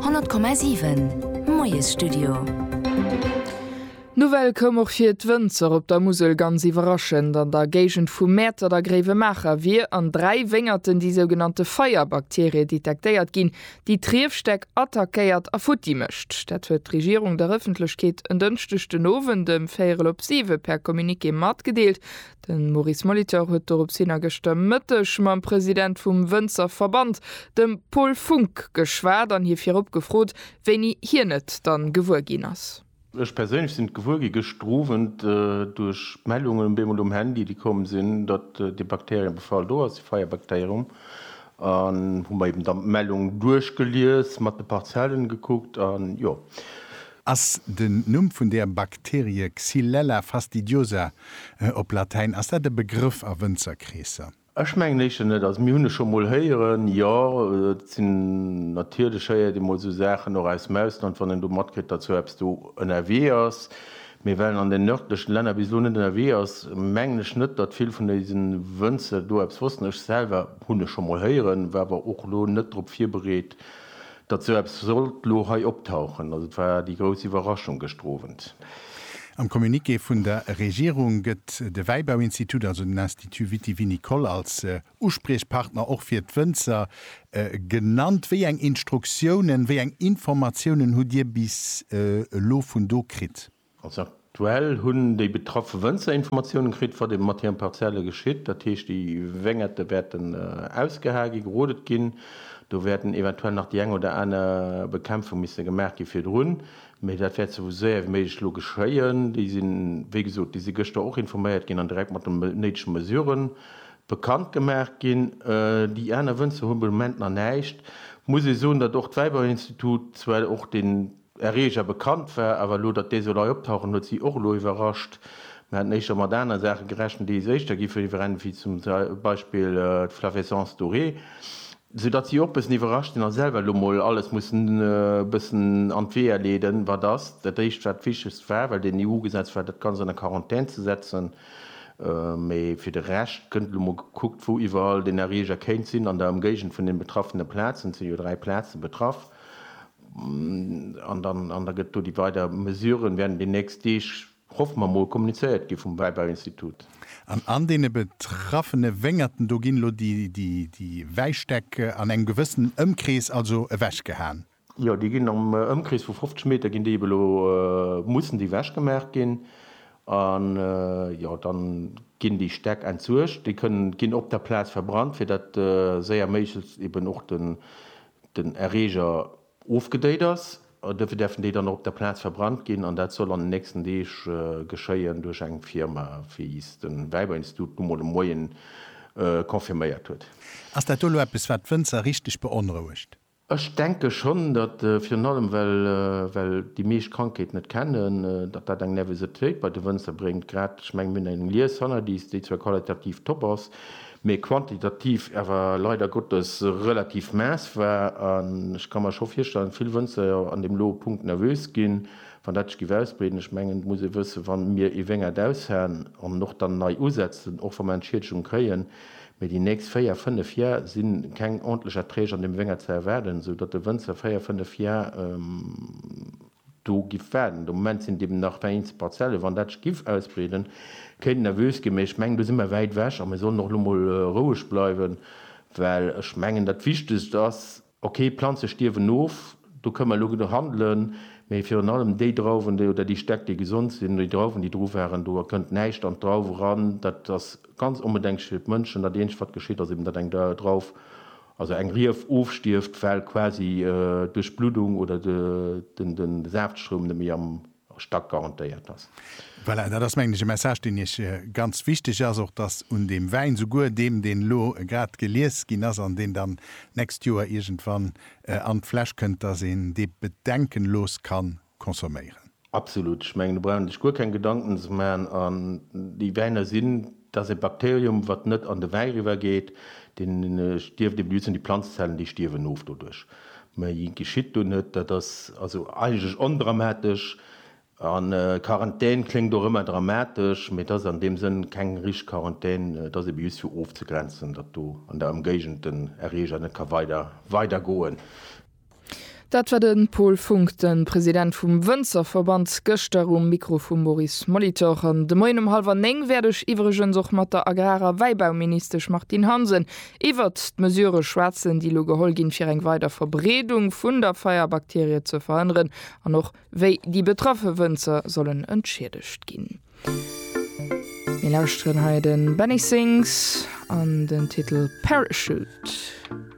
100,7 Moiesstudio. D'Nouvelle koum och fir d'Wënzer op der Musel ganz iwwerraschend. An der Géigend vu Mäertert a Gréiwemaacher wier an dräi Wéngerten déi sougenannte Feierbakterie detektéiert ginn, déi d'Riefstäck attackéiert a futti mécht. Dat huet d'Regierung der Ëffentlechkeet en Dënschdeg den Owend ëm véierel op siwe per Communiqué matgedeelt. De Maurice Molitor huet dorops hin a gëschter Mëtteg mam President vum Wënzerverband, dem Paul Funck, geschwat an hie virop gefrot, wéini hien et dann gewuer ginn ass. Ech perséinlech sinn et gewuer gi gëschter Owend duerch d'Mellungen op eemol um Handy, déi komm sinn, datt dee Bakteriebefall do ass, dee Feierbakterium, an hu mer eben dann d'Mellung duerchgelies, mat de Parzellen gekuckt an jo. Ass den Numm vun der Bakterie Xylella fastidiosa, op Latäin, ass dat e Begrëff a Wënzerkreesser? Ech mengen éischter net. Also mir hunn e scho mol héieren, jo. Et sinn, natierlech héiert ee mol esou Saachen och aus dem Ausland, wann een do matkritt, datt esou eppes do ënnerwee ass. Mee well en an den nërdlechen Länner bis elo net ënnerwee ass, mengen ech net, datt vill vun eise Wënzer do eppes wossten. Ech selwer hunn e scho mol héieren, war awer och elo net drop virbereet. Datt sou eppes sollt lo hei optauchen, datt et war déi grouss Iwwerraschung gëschter Owend. Am Communiqué vun der Regierung gëtt de Wäibauinstitut, also den Institut vitivinicole, als Uspriechpartner och fir d'Wënzer genannt. Wéi eng Instruktiounen, wéi eng Informatiounen hutt Dir bis elo vun do kritt? Also aktuell hunn déi betraffe Wënzer Informatiounen kritt, wat ebe mat hiren Parzelle geschitt. Dat heescht, déi Wéngerte wäerten ausgehae ginn, gerodet ginn. Do wäerten eventuell nach déi eng oder aner Bekämpfung misse gemaach gi virdrun, mee dat wäert sou séier wéi méiglech elo geschéien. Déi sinn, wéi gesot, déi si gëschter och informéiert ginn an direkt mat de néidege Mesure bekannt gemaach ginn. Déi aner Wënzer hu be Moment nach näischt. Muss ee soen, datt och d'Wäiberinstitut zwar och den, Erreger bekannt war, awer elo, datt dee soll hei optauchen, huet si och elo iwwerrascht. Mir haten éischter mat aner Saache gerechent, déi éischter gi virwrennen, wéi zum Beispill d'Flavescence dorée, soudatt si och bëssen iwwerrascht sinn a selwer elo mol alles mussen e bëssen an d'Weeër leeden, wat ass dat éischt, wat d'Wichtegst war, well den EU-Gesetz war, dat Ganzt an der Quarantän ze setzen. Mee fir de Rescht gëtt elo mol gekuckt, wou iwwerall den Erreger kéint sinn an der Ëmgéigend vun den betraffene Plazen, et sinn jo dräi Plaze betraff, An dann an da gëtt do déi weider Mesuren, wäerten déi nächst Deeg, hoffe mer mol, kommunizéiert gi vum Wäibauinstitut. An an deene betraffene Wéngerten do ginn elo déi déi déi Wäistäck an engem gewëssenen Ëmkrees also ewechgehaen? Jo, déi ginn am Ëmkrees vu 50 Meter ginn déi elo mussen déi wechgemaach ginn. An jo, dann ginn déi Stäck entsuergt. Déi kënnen ginn op der Plaz verbrannt, fir datt séier méiglechst eben och den den Erreeger ofgedéit ass. Duerfir däerfen déi dann och op der Plaz verbrannt ginn an dat soll an den nächsten Deeg geschéien duerch eng Firma, wéi es de Wäiberinstitut nu mol de Moien confirméiert huet. Ass dat elo eppes, wat d'Wënzer richteg beonrouegt? Ech denke schonn, datt, virun allem well déi meescht d'Krankheet net kennen, datt dat eng Nervositéit bei de Wënzer bréngt. Grad, ech mengen, mir hunn eng Lies hannerlies, déi zwar qualitativ top ass, mee quantitativ awer leider Gottes relativ maess war. An ech ka mer scho virstellen, vill Wënzerjer an deem lo Punkt nervös ginn, wann dat sech giff ausbreeden. Ech mengen, et muss ee wëssen, wa mir ee Wéngert aushaen an och dann nei usetzen, och wa mer Entschiedegung kréien, mee déi nächst véier, fënnef Jar si keng ordentlech Erträg an deem Wéngert ze erwaarden, esou datt de Wënzer véier, fënnef Jar, Do giff waarden. De Moment sinn et eben nach der eenzel Parzellen. Wann dat sech giff ausbreeden, kéint nervös ginn. Mee ech mengen, do si mer wäit ewech a mir sollen och elo mol roueg bleiwen, well ech mengen, dat Wichtegst ass, okay, d'Planze stierwen of, do kënne mer elo handelen, mee virun allem déi Drauwen oder déi Stäck, déi gesond sinn, oder déi Drauwen, déi dru waren, do kënnt näischt an d'Drauw eran. Dat ass ganz onbedenklech fir d'Mënschen. Dat eenzegt, wat geschitt, ass eben, datt eng Drauf Also eng Rief ofstierft, well quasi duerch d'Bluddung oder de Saaftstroum net méi am Stack garantéiert ass. Voilà, dat ass mengen ech e Message, deen Iech ganz wichteg ass, och dass un deem Wäin, souguer deem, deen elo grad gelies ginn ass an deen dann d'nächst Joer iergendwann an d'Fläsch kënnt, dass een dee bedenkenlos kann consomméieren. Absolut. Ech mengen do brauch een sech guer keng Gedanken ze maachen. An déi Wäiner sinn, dat ass e Bakterium wat net an de Wäi eriwwer geet, deen stierft eben, déi sinn déi Planzenzellen déi stierwen of doduerch, mä et geschitt do net. Dat ass also eigentlech ondramatesch. An Quarantän kléngt och ëmmer dramatesch, mä et ass an deem Sënn keng richteg Quarantän. Et ass eben just fir ofzegrenzen, datt do an der Ëmgéigend den Erreeger net ka weider weider goen. Dat war de Paul Funck, de President vum Wënzerverband, gëschter um Mikro vum Maurice Molitor. An de Moien um hallwer néng wäert ech iwwregens och mat der Agrar a Wäibauministesch Martine Hansen iwwert d'Mesurë schwätzen, déi elo geholl ginn, fir eng weider Verbreedung vun der Feierbakterie ze verhënneren, an och wéi déi betraffe Wënzer sollen entschiedegt ginn. Mir lauschteren hei de Benny Sings an den Titel Parachute.